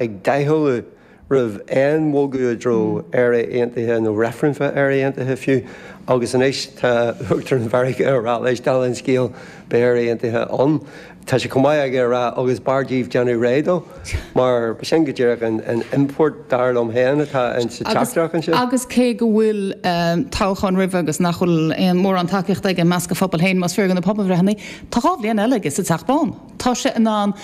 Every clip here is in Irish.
ag doichealladh roimh aon bhogadh i dtreo Éire Aontaithe nó reifreann ar Éire Aontaithe fiú, agus anois tá Uachtarán Mheiriceá ag rá leis, dála an scéil, beidh Éire Aontaithe ann. Tá sé chomh maith aige a rá, agus b'fhearr daoibh déanamh réidh dó, mar sin go díreach an import, dar liom féin, atá sa teachtaireacht anseo. Agus cé go bhfuil toghchán roimhe agus nach bhfuil aon mhórán tacaíochta aige i measc a phobail féin, más fíor do na pobalbhreitheanna, tá dhá bhliain eile aige sa Teach Bán, tá sé in ann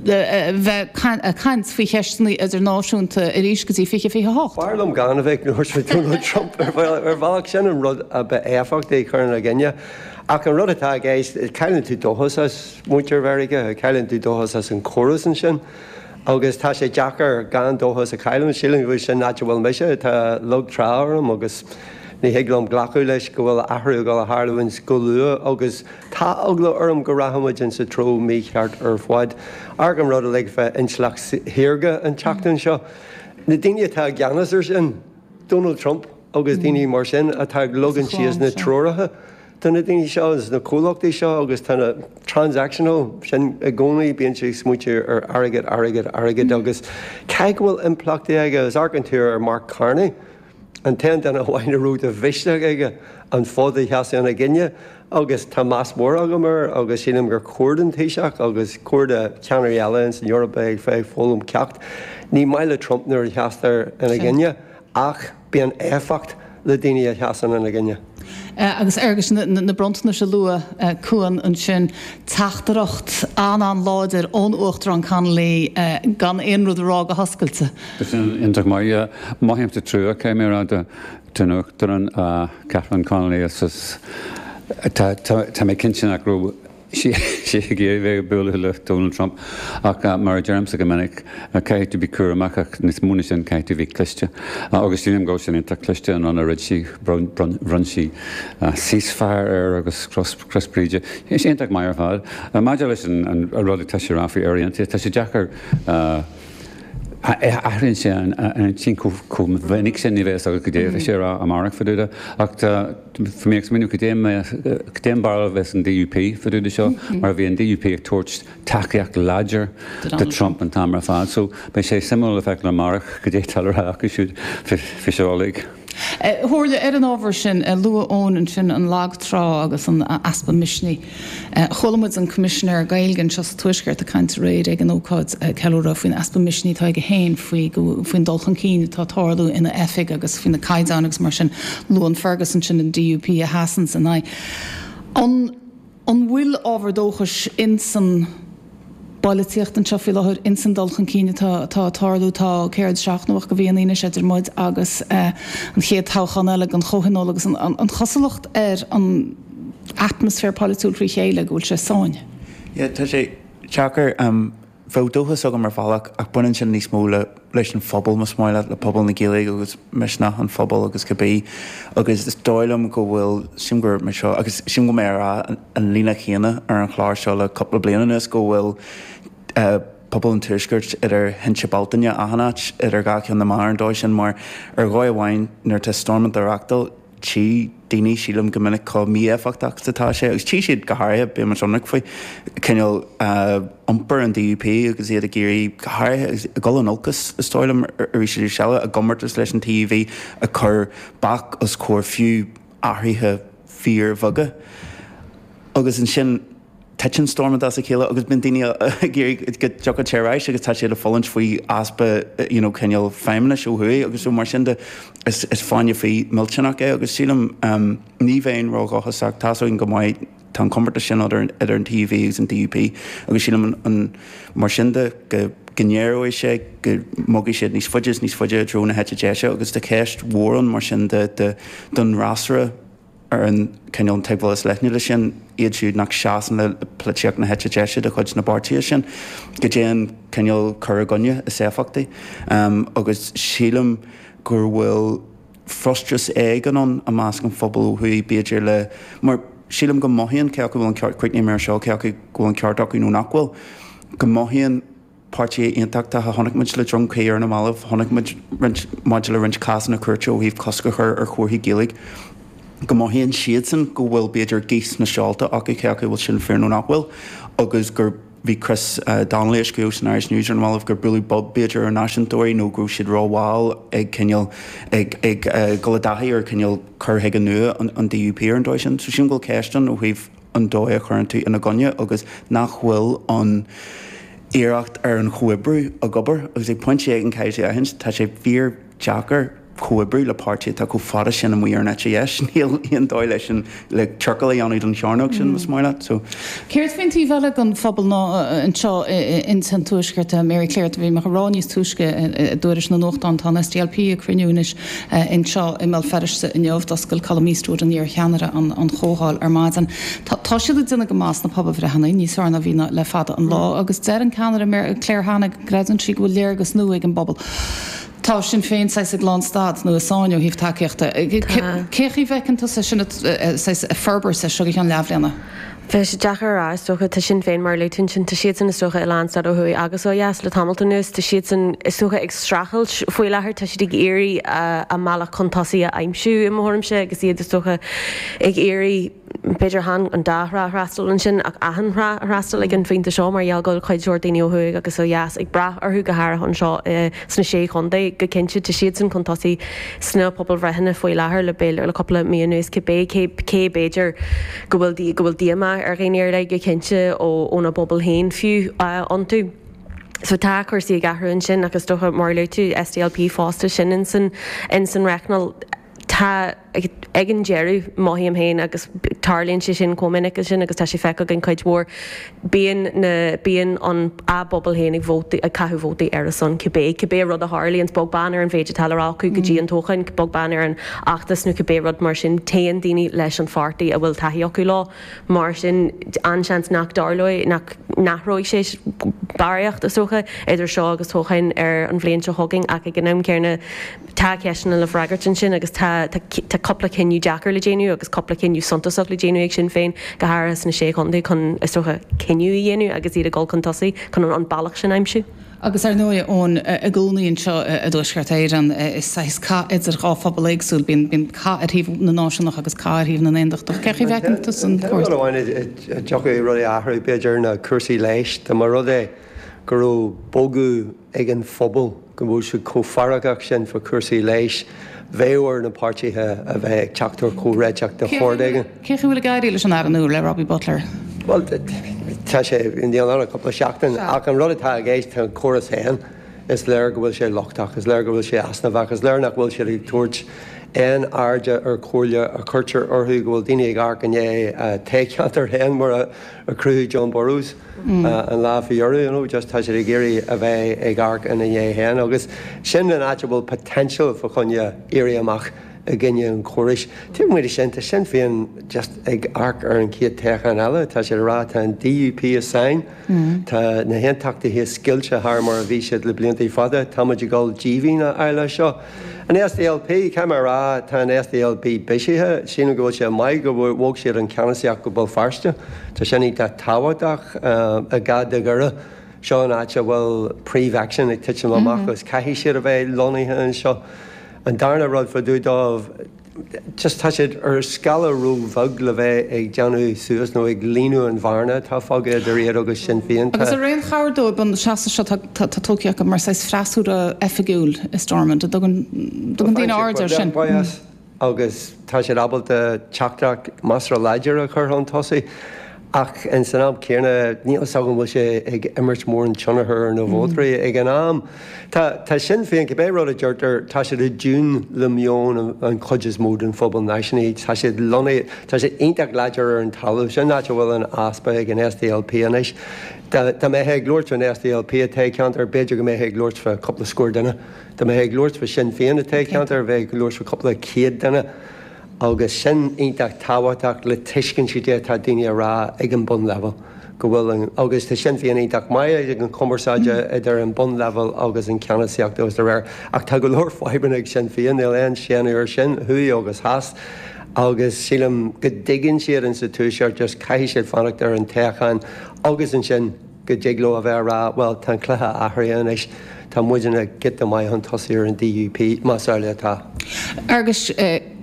bheith ag caint faoi cheisteanna idirnáisiúnta arís go dtí 2028. B'fhearr liom gan a bheith ag labhairt faoi Donald Trump. Ar bhealach, sin an rud ab éifeachtaí a chur ina gcoinne. Ach an rud atá i gceist, cailleann tú dóchas as muintir Mheiriceá, cailleann tú dóchas as an chóras ansin. Agus tá sé deacair gan dóchas a chailleadh. Sílim go bhfuil sin an áit a bhfuil mise. Tá lag trá orm agus ní thig liom glacadh leis go bhfuil athrú ag gabháil a tharlúint go luath agus. Tá eagla orm go rachaidh muid insa treo mícheart ar fad. Amharc an rud uilig fá intleacht shaorga an tseachtain seo. Na daoine atá i gceannas ar sin, Donald Trump agus daoine mar sin, atá ag leagan síos na treoracha do na daoine seo is na comhlachtaí seo agus tá na, transactional, sin i gcónaí, bíonn siad ag smaointeamh ar airgead, airgead, airgead agus caithfidh go bhfuil impleachtaí aige. Is amharcann tú ar Mark Carney. an t-aon duine amháin a raibh de mhisneach aige an fód a sheasamh ina gcoinne agus tá meas mór agam air agus sílim gur chóir don Taoiseach agus gur chóir do cheannairí eile ins an Eoraip a bheith ag foghlaim ceacht. Ní maith le Trump nuair a sheastar ina gcoinne ach bíonn éifeacht le daoine a sheasann ina gcoinne. Agus Fhergus na bronntanais a luaigh Cuan ansin, teachtaireacht an-an-láidir ón Uachtarán Connolly gan aon rud a rá go hoscailte. Sin iontach maith. Mothaímse trua, caithfidh mé a rá, don Uachtarán Catherine Connolly, tá mé cinnte nach raibh, sí ag iarraidh bheith ag bualadh le Donald Trump ach mar a deirimse go minic caithfidh tú a bheith cúramach ach níos mó na sin caithfidh tú a bheith cliste. Agus sílim go raibh sin iontach cliste an rud a rinne sí bhronn sí ceasefire air agus cros Bríde. Bhí sé iontach maith ar fad. Maidir leis an rud atá sé a rá faoi Éire Aontaithe tá sé deacair athraíonn sé a intinn chomh minic sin ní bheidh fhios agat cad é a bheidh sé a rá amárach fá dtaobh de ach tá Tá mé ag smaoineamh cad é cad é an bharúil a bheas ag an DUP fá dtaobh de seo mar bhí an DUP ag tabhairt tacaíocht láidir do Trump an t-am ar fad. So beidh sé suimiúil le feiceáil amárach cad é atá le rá acu siúd faoi seo uilig. A Mháire, ar an ábhar sin a luaigh Eoin ansin, an lag trá agus an easpa misnigh. Chuala muid an Coimisinéir Gaeilge anseo sa Tuaisceart ag caint aréir ag an ócáid ceiliúrtha faoin easpa misnigh atá aige féin faoin dul chun cinn atá ag tarlú ina oifig agus faoi na caighdeáin agus mar sin luann Fergus ansin an DUP a sheasann ina n-aghaidh. An bhfuil ábhar dóchais ins an. bpolaitíocht anseo faoi láthair in san dul chun cinn atá atá ag tarlú. Tá céard seacht nó ocht de mhíonna anois idir muid agus an chéad toghchán eile don chomhthionól agus an an chosúlacht ar an atmaisféar polaitiúil frí chéile go bhfuil sé i sáinn. Yeah tá sé deacair. Bheadh dóchas agam ar bhealach ach baineann sin níos mó le leis an phobal, más maith leat, le pobal na Gaeilge agus misneach an phobail agus cibé agus is dóigh liom go bhfuil, sílim go raibh mé seo agus sílim go raibh mé ag rá, an líne chéanna ar an chlár seo le cúpla bliain anuas, go bhfuil pobal an tuaiscirt idir thinte Bealtaine achan áit, idir dhá cheann na meá ar an dóigh sin, mar ar dhóigh amháin nuair atá Stormont á reachtáil, tchí daoine, sílim, go minic chomh mí-éifeachtach is atá sé, agus tchí siad go háirithe, bíodh muid ionraic faoi, cineál iompar an DUP agus iad ag iarraidh, go háirithe, ag dul in olcas, is dóigh liom, arís is arís eile, a gcomórtas leis an TUV, ag cur bac os comhair fiú, athruithe fíorbheaga agus ansin titeann Stormont as a chéile agus bíonn daoine ag iarraidh go dtiocfadh sé ar ais agus tá siad ag fulaingt faoi easpa you know cineál feidhmeannais ó thuaidh agus so mar sin de is fáinne fí millteanach é agus sílim ní bheinn ró-dhóchasach tá 's againn go mbeidh Tá an comórtas sin idir an TUV agus an DUP agus sílim mar sin de go n-éireoidh sé go mbogfaidh siad níos faide is níos faide i dtreo na heite deise agus tá ceist mhór ann mar sin de don fhreasúra ar an tuigbheáil is leithne de sin, iad siúd nach seasann le polaitíocht na heite deise de chuid na bpáirtithe sin, cad é an cineál cur i gcoinne is éifeachtaí agus sílim go bhfuil. frustrachas éigin ann i measc an phobail ó thuaidh, b'fhéidir, le, mar sílim go mothaíonn cé acu go bhfuil an ceart, cuid na himreoirí seo, cé acu go bhfuil an ceart acu nó nach bhfuil, go mothaíonn páirtithe aontachtacha, chonaic muid le Droim Crí ar na mallaibh, chonaic muid maidir le roinnt cásanna cúirte ó thaobh cosc a chur ar chomharthaí Gaeilge, go mothaíonn siadsan go bhfuil b'fhéidir gaoth sna seolta acu cé acu bhfuil sin fíor nó nach bhfuil agus gur. Bhí Chris Donnelly ag scríobh san Irish News ar na mallaibh gur buaileadh bob b'fhéidir ar náisiúntóirí nó go raibh siad rómhall ag cineál ag ag dul i dtaithí ar cineál cur chuige nua an DUP ar an dóigh sin. So sílim go bhfuil ceist ann ó thaobh an dóigh a chuireann tú ina gcoinne agus nach bhfuil an iarracht ar an chomhoibriú ag obair agus ag pointe éigin caithfidh tú aithint tá sé fíor deacair comhoibriú le páirtí atá chomh fada sin amuigh ar an eite dheis. Níl aon dóigh leis an, le ciorcal a dhéanamh don chearnóg sin, más maith leat. So. Céard faoin taobh eile den phobal ná anseo in san tuaisceart? Mary Claire, bhí mé a rá níos túisce i dtuairisc na nuachtán, tá an SDLP ag cruinniú anois anseo i mBéal Feirste inniu, d'oscail Colum Eastwood, an iarcheannaire, an chomhdháil ar maidin. Tá siad ag déanamh go maith sna pobalbhreitheanna, níos fearr ná bhí le fada an lá, agus deir an ceannaire Claire Hanna go. Creideann sí go bhfuil léargas nua ag an bpobal. Tá Sinn Féin saghas ag lán stad nó i sáinn ó thaobh tacaíochta. Cén chaoi a bhfeiceann tusa sin saghas ag forbairt as seo go ceann leathbhliana? Bheadh sé deacair a rá. Is dócha, tá Sinn Féin mar a luaigh tú ansin, tá siadsan is dócha i lán stad ó thuaidh agus ó dheas le tamalt anuas. Tá siadsan is dócha ag streachailt faoi láthair. Tá siad ag iarraidh a mbealach chun tosaigh a aimsiú i mo thuairimse agus iad is dócha ag iarraidh, B'fhéidir chan an dá thrá a fhreastal ansin ach achan thrá a fhreastal ag an phointe seo mar gheall go bhfuil cuid mhór daoine ó thuaidh agus ó dheas ag brath orthu, go háirithe anseo sna Sé Chontae. Go cinnte, tá siadsan chun tosaigh sna pobalbhreitheanna faoi láthair le cúpla mí anuas cibé, cé gur féidir go bhfuil díomá ar dhaoine ar leith, go cinnte óna bpobal féin fiú, iontu. So tá cúrsaí ag athrú ansin ach is dócha, mar a luaigh tú, SDLP fosta, sin in san reicneáil. Tá. ag an deireadh, mothaím féin agus tarlaíonn sé sin chomh minic sin agus tá sé feicthe againn cuid mhór, bíonn na, bíonn an, a bpobal féin ag vóta, ag caitheamh vótaí ar a son cibé, cibé rud a tharlaíonns, bog beann ar an mhéid atá le rá acu go dtí an toghchán, bog beann ar an fheachtas nó cibé rud mar sin, téann daoine leis an pháirtí a bhfuil taithí acu leo. Mar sin, an-seans nach dtarlóidh, nach n-athróidh sé barraíocht, is dócha, idir seo agus toghchán na bliana seo chugainn ach ag an am céanna, Tá ceisteanna le freagairt ansin agus tá cúpla cinneadh deacair le déanamh agus cúpla cinneadh suntasach le déanamh ag Sinn Féin, go háirithe sna Sé Chontae, chun, is dócha, cinneadh a dhéanamh agus iad ag dul chun tosaigh chun an bealach sin a aimsiú. Agus, ar ndóigh, Eoin, i gcónaí anseo i dTuaisceart Éireann, is saghas cath idir dhá phobal éagsúil, bíonn cath ar thaobh na náisiúnach agus cath ar thaobh na n-aondachtach. Cén chaoi a bhfeiceann tusa cúrsaí? An ceann amháin a dtiocfadh rudaí a athrú, b'fhéidir, ná cúrsaí leighis. Dá mba rud é go raibh bogadh. ag an phobal go bhfuil siad chomh feargach sin faoi chúrsaí leighis, bheadh ar na páirtithe a bheith ag teacht ar chomhréiteach de shórt éigin. Cén chaoi a bhfuil ag éirí leis an Aire nua, le Robbie Butler? Bhuel, tá sé díreach ann le cúpla seachtain ach an rud atá i gceist, an córas féin, is léir go bhfuil sé lochtach, is léir go bhfuil sé easnamhach, is léir nach bhfuil siad ag tabhairt aon airde ar chomhairle a chuirtear orthu, go bhfuil daoine ag amharc i ndiaidh a dtoghcheantair féin, mar a a chruthaigh John Burrows an lá faoi dheireadh you know just tá siad ag iarraidh a bheith ag amharc ina ndiaidh féin agus sin an áit a bhfuil potential fá choinne éirí amach i gcoinne an chórais. Taobh amuigh de sin tá Sinn Féin just ag amharc ar an chéad toghchán eile tá siad ag rá tá an DUP i sáinn, tá na haontachtaithe scoilte thar mar a bhí siad le blianta fada, táimid ag dul díbhinn a fháil as seo. An SDLP, Caithfidh mé a rá, tá an SDLP bisithe. Sílim go bhfuil sé maith go bhog siad an ceannasaíocht go Béal Feirste. Tá sin iontach tábhachtach in áit Dhoire. Seo an áit a bhfuil príomh aicsean ag titim amach agus caithfidh siad a bheith lonnaithe anseo. An darna rud fá dtaobh dóibh, just tá siad ar scála ró-bheag le bheith ag déanamh suas nó ag líonadh an bhearna atá fágtha idir iad agus Sinn Féin. Agus ar aon chabhair dóibh an seasamh seo atá tugtha acu mar saghas freasúra oifigiúil i Stormont an dtugann daoine aird air sin? Agus tá siad ábalta teachtaireacht measartha láidir a chur chun tosaigh. Ach san am céanna, níl fhios agam an bhfuil sé ag imirt mórán tionchar ar na vótairí ag an am seo. Tá Sinn Féin, cibé rud a deirtear, tá siad i dtiún le meon an chuid is mó den phobal náisiúnaí. Tá siad lonnaithe, tá siad iontach láidir ar an talamh. Sin áit a bhfuil an easpa ag an SDLP anois. Dá mbeifeá ag labhairt fán SDLP i dtoghcheantar, b'fhéidir go mbeifeá ag labhairt fá cúpla scór duine. Dá mbeifeá ag labhairt fá Sinn Féin i dtoghcheantar, bheifeá ag labhairt fá cúpla céad duine. agus sin iontach tábhachtach le tuiscint cad é atá daoine a rá ag an bunleibhéal go bhfuil an, agus tá Sinn Féin iontach maith ag an cumarsáid idir an bunleibhéal agus an ceannasaíocht agus dá réir, ach tá go leor fadhbanna ag Sinn Féin, níl aon séanadh ar sin, thuaidh agus theas, agus sílim go dtuigeann siad ins sa Tuaisceart just caithfidh siad fanacht ar an toghchán agus ansin. go dtig leo a bheith a rá bhuel tá an cluiche athraithe anois, tá muidinne giota maith chun tosaigh ar an DUP, más amhlaidh atá. Feargus,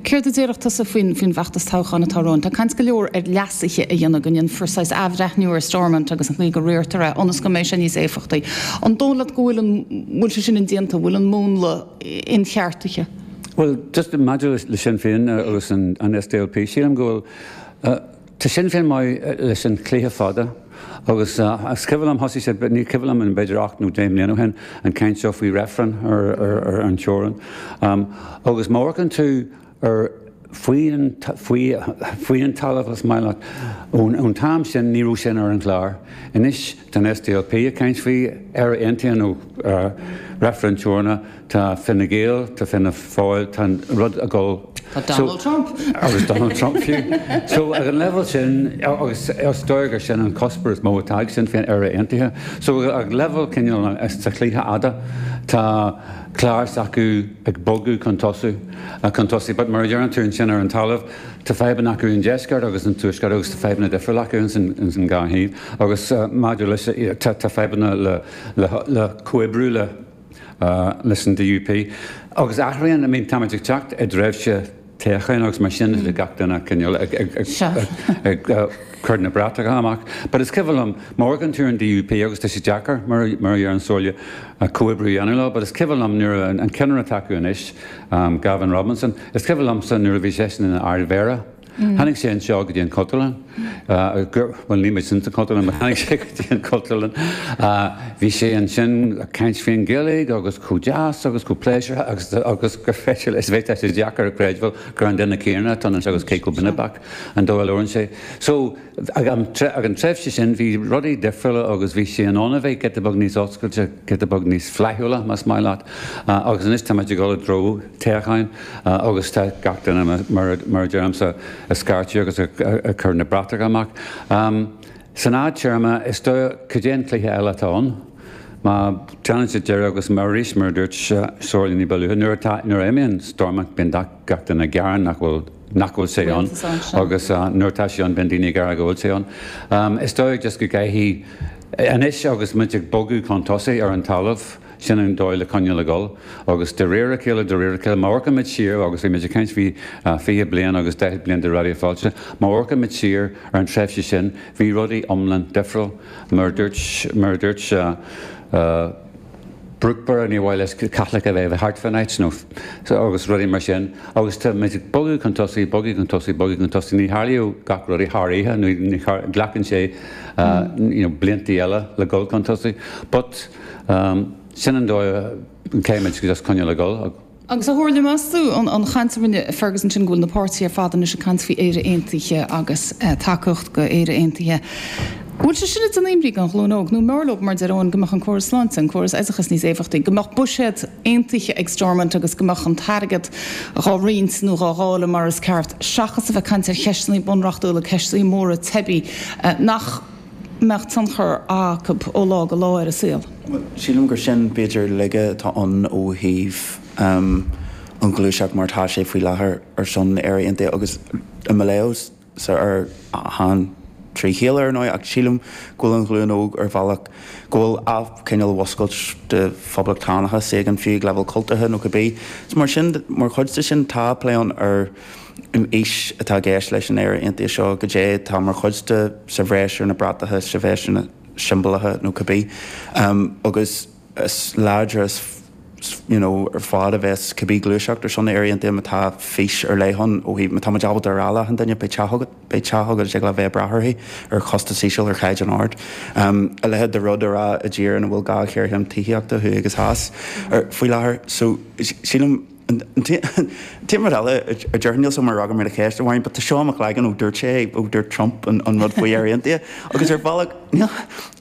céard a déarfá tusa faoin bhfeachtas toghcháin atá romhainn? Tá caint go leor ar leasuithe a dhéanamh, go ndéanfar saghas athbhreithniú ar Stormont agus an chaoi go riartar é, ionas go mbeidh sé níos éifeachtaí. An dóigh leat go bhfuil an, bhfuil sé sin indéanta, bhfuil an múnla incheartaithe? Bhuel, just maidir le Sinn Féin agus an SDLP, sílim go bhfuil, Tá Sinn Féin maith leis an chluiche fada agus is cuimhin liom, thosaigh siad, ní cuimhin liom, b'fhéidir ocht nó deich mbliana ó shin, an chaint seo faoi reifreann ar an teorann. Agus má amharcann tú ar faoi an talamh, más maith leat, ón t-am sin ní raibh sin ar an gclár. Anois. Tá an SDLP ag caint faoi Éire Aontaithe nó reifreann teorann? Tá Fine Gael, tá Fianna Fáil, tá an rud ag dul. Tá Donald Trump. Agus Donald Trump fiú. So ag an leibhéal sin, agus is dóigh gur sin an cuspóir is mó atá ag Sinn Féin, Éire Aontaithe. So ag leibhéal cineál sa chluiche fhada, tá clár s'acu ag bogadh chun tosaigh, chun tosaigh. But mar a deireann tú ansin ar an talamh, Tá fadhbanna acu i ndeisceart agus i dtuaisceart agus tá fadhbanna difriúla acu ins an dhá thaobh agus maidir, tá fadhbanna le comhoibriú le, leis an DUP agus athraíonn, I mean táimid ag teacht i dtréimhse toghcháin agus mar sin de gach duine ag coinneáil ag cur na bratacha amach but is cuimhin liom má amharcann tú ar an DUP agus tá sé deacair mar a deir Somhairle comhoibriú a dhéanamh leo but is cuimhin liom nuair a an ceannaire atá acu anois Gavin Robinson Is cuimhin liomsa nuair a bhí seisean ina Ardmhéara, tháinig sé anseo go dtí an Chultúrlann, bhuel níl muid san Chultúrlann ach tháinig sé go dtí an Chultúrlann, bhí sé ansin ag caint faoin Ghaeilge agus chomh deas agus chomh pléisiúrtha agus agus gur féidir leis a bheith, tá sé deacair a chreidbheáil gur an duine céanna atá anseo agus cé chomh binibeach an dóigh a labhrann sé. So ag an ag an tréimhse sin bhí rudaí difriúla agus bhí sé in ann a bheith giota beag níos oscailte, giota beag níos flaithiúla más maith leat agus anois táimid ag dul i dtreo, isteach agus tá gach duine, mar a deir mise, ag scairteadh agus ag cur na mbratach amach. San fhadtéarma, is dóigh, cad é an chiall eile atá ann? Má déanann siad deireadh agus arís, mar a dúirt Somhairle ní ba luaithe, nuair a imíonn Stormont bíonn gach duine ag gearán nach bhfuil sé ann agus nuair atá sé ann bíonn daoine ag gearán go bhfuil sé ann. Is dóigh just go gcaithfidh, anois agus muid ag bogadh chun tosaigh ar an talamh, Sin an dóigh le coinneáil ag dul agus de réir a chéile, de réir a chéile. Má amharcaimid siar, agus bhí muid ag caint faoi 20 bliain agus 40 bliain de Raidió Fáilte, má amharcaimid siar ar an tréimhse sin, bhí rudaí iomlán difriúil. Mar a dúirt Brookeborough, níor mhaith leis Caitlicigh a bheith thart fán áit nó agus rudaí mar sin. Agus tá muid ag bogadh chun tosaigh, bogadh chun tosaigh, bogadh chun tosaigh. Ní tharlaíonn gach rud thar oíche nó glacann sé blianta eile le dhul chun tosaigh but. Sin an dóigh an céim is just coinneáil ag dul. Agus a Shomhairle, meas tú, an chaint a rinne Ferguson sin go bhfuil na páirtithe ar fad anois ag caint faoi Éire Aontaithe agus tacaíocht do Éire Aontaithe, an bhfuil sé sin ag dímholadh an ghlúin óg, nó arbh fhearr leo mar deir Eoin, go mbeadh an córas sláinte, an córas oideachas níos éifeachtaí, go mbeadh buiséad aontaithe ag Stormont agus go mbeadh an t-airgead dhá roinnt nó dhá dháileadh mar is ceart seachas a bheith ag caint ar cheisteannaí bunreachtúla, ceisteannaí móra teibí nach. mbeadh tionchar acu ó lá go lá ar a saol. Sílim gur sin b'fhéidir laige atá ann ó thaobh an ghluaiseacht mar atá sé faoi láthair ar son Éire Aontaithe agus i measc an phobail trí chéile ar ndóigh ach sílim go bhfuil an ghlúin óg ar bhealach go bhfuil athchineál mhúscailt de phoblachtánachas éigin fiú ag leibhéal cultúrtha nó cibé is mar sin mar chuid de sin tá plé ann ar An fhís atá i gceist leis an Éire Aontaithe seo, goidé atá mar chuid de, sa bhreis ar na bratacha, sa bhreis ar na siombalatha nó cibé, agus is láidre is, you know, ar fad a bheas cibé gluaiseacht ar son na Éire Aontaithe má tá fís ar leith ann ó thaobh, má tá muid ábalta a rá le achan duine, beidh teach agat, beidh teach agat is ag leibhéal bheith ag brath uirthi, ar chostas íseal, ar chaighdeán ard. A leithéid de rud a rá i dtír ina bhfuil dhá ghéarchéim tithíochta, thuaidh agus theas, faoi láthair. So, sílim. Tá rud eile a déarfainn níl sé ach mar a bheadh mí-cheist amháin, but tá sé i mo chloigeann ó dúirt sé ó dúirt Trump an rud faoi Éire aontaithe agus ar bhealach níl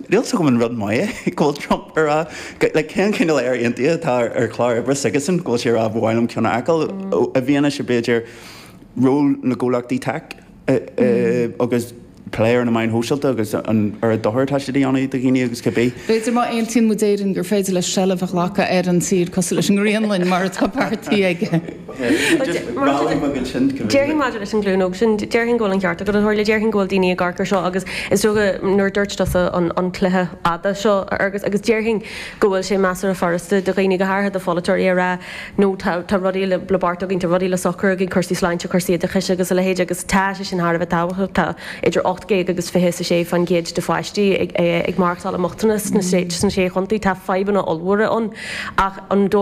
fhios agam an rud maith é go bhfuil Trump a rá like cén cineál Éire aontaithe atá ar chlár oibre aige sin go bhfuil sé a rá ba mhaith liom ceann a fheiceáil i bhfianaise b'fhéidir ról na gcomhlachtaí teic. agus plé ar na meáin shóisialta agus an dochar atá siad a dhéanamh do dhaoine agus cibé. B'fhéidir má aontaíonn muid Éire gur féidir leis seilbh a ghlacadh ar an tír cosúil leis an nGrionnlainn mar atá beartaithe aige. Déarfainn maidir leis an ghlúin óg sin, déarfainn go bhfuil an ceart agat, a Shomhairle. Déarfainn go bhfuil daoine ag amharc ar seo agus is dócha nuair a dúirt tusa an cluiche fada seo a Fhearghuis agus déarfainn go bhfuil sé measartha furasta do dhaoine, go háirithe do pholaiteoirí, a rá, nó tá rudaí le beartú againn, tá rudaí le socrú againn, cúrsaí sláinte, cúrsaí oideachais agus a leithéid agus tá sé sin thar a bheith tábhachtach. Tá idir ocht déag agus fiche is a sé fán gcéad de pháistí ag maireachtáil i mbochtanas sna sé chontae. Tá fadhbanna ollmhóra ann ach an.